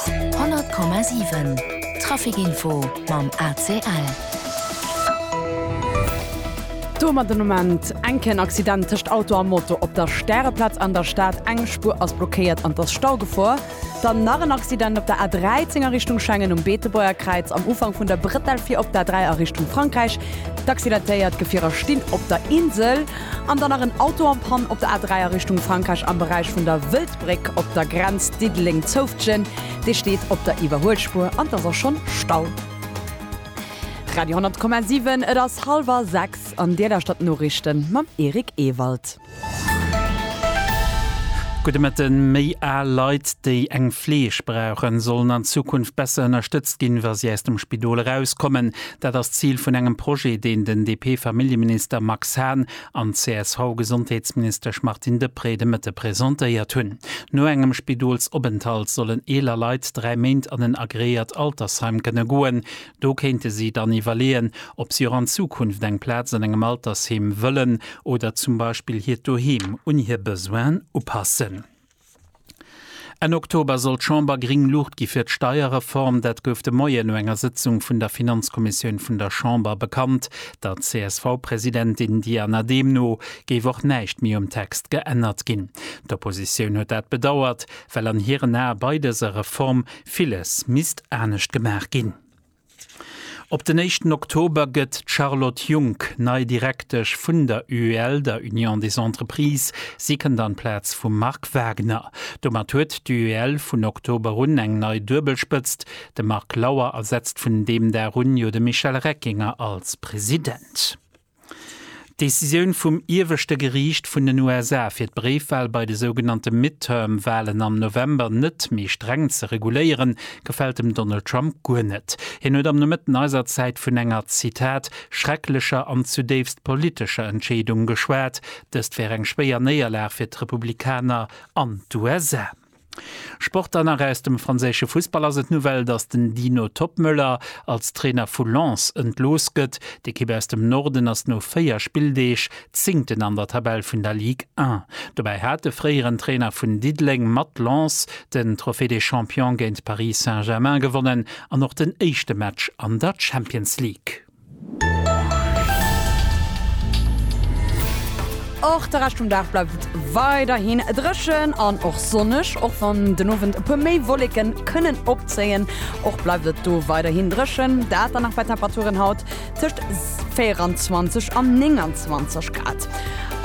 100,7 Trafic Info mam ACL. Domat den Ament, Enken Accident tëscht Auto a Moto op der Stäreplaz an der Stad, eng Spuer ass blockéiert an et ass Staugefor. Dann nach en Accident op der A13 a Richtung Schengen um Beetebuerger Kräiz am Ufank vun der Bretel fir op der A3 a Richtung Frankräich. D'Accidentéiert Gefierer stinn op der Insel. An dann nach en Auto en panne op der A3 a Richtung Frankräich am Beräich vun der Wëldbréck op der Grenz Diddeleng-Zoufftgen. Dee steet op der Iwwerhuelspuer an et ass och schonn Stau. Radio 10,7 Et ass hallwer 6 an Dir lauschtert d'Noriichten mam Eric Ewald. Gudde Mëtten, Méi al Leit, déi eng Fleeg brauchen, sollen an Zukunft besser ënnerstëtzt ginn, wa si aus dem Spidol erauskommen. Dat ass d'Zil vun engem Projet, deen den DP-Familljeminister Max Hahn an d'CSV-Gesondheetsministesch Martine Deprez de Mëtte presentéiert hunn. No engem Spidolsopenthalt sollen eeler Leit dräi Méint an en agreéiert Altersheim kënne goen. Do kéinte si dann iwwerleeën, ob si och an Zukunft eng Plaz an engem Altersheem wëllen oder zum Beispill hiert Doheem un hir Besoinen upassen. Enn Oktober soll d'Chamber gring Luucht gi fir d'Steierreform. Dat gouf de Moien no enger Sëtzung vun der Finanzkommissioun vun der Chamber bekannt. Der CSV-Presidentin Diana Dehm no géif och näischt méi um Text geännert ginn. D'Oppositioun huet dat bedauert, well an hiren Ae bei dëser Reform villes misst anescht gemaach ginn. Op den éischten Oktober gëtt d'Charlotte Junck nei Direktesch vun der UEL, der Union des Entreprises. Si kënnt an d'Plaz vum Marc Wagner. Domat huet d'UEL vun Oktober un eng nei Duebelspëtzt, de Marc Lauer ersetzt vun deem Dag un jo de Michel Reckinger als President. D'Decisioun vum Ieweschte Geriicht vun den USA, fir d'Bréifwal bei de sougenannte Midterm-Walen am November net méi streng ze reguléieren, gefält dem Donald Trump guer net. Hien huet am Nomëtten eiser Zäit vun enger, Zitat, schrecklecher an zudéifst politescher Entscheedung geschwat. Dëst wär eng schwéier Néierlag fir d'Republikaner an d'USA. Sport dann nach, Aus dem franséische Fussball ass et d'Nouvelle, datt den Dino Toppmöller als Trainer vu Lens entlooss gëtt. D'Ekipp aus dem Norden ass no 4 Spilldeeg Zéngten an der Tabell vun der Ligue 1. Dobäi hat de fréieren Trainer vun Diddeleng mat Lens den Trophée des Champions géint Paris Saint-Germain gewonnen an och den éischte Match an der Champions League. Och de Rescht vum Dag bleift et weiderhin dréchen an och sonneg, och wann den Owend e puer méi Wolleken kënnen opzéien. Och bleift et do weiderhin dréchen, dat dann nach bei Temperaturen haut tëscht 24 an 29 Grad.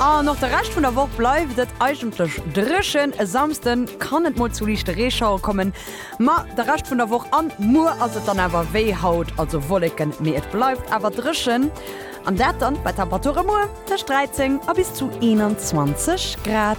An och de Rescht vun der Woch bleift et eigentlech dréchen, e Samsden kann et mol zu liichte Reeschauere kommen, Ma de Rescht vun der Woch an muer ass et dann awer wéi haut, also Wolleken, mee et bleift awer dréchen an dat dann bei Temperature muer tëscht 13 a bis zu 21 Grad.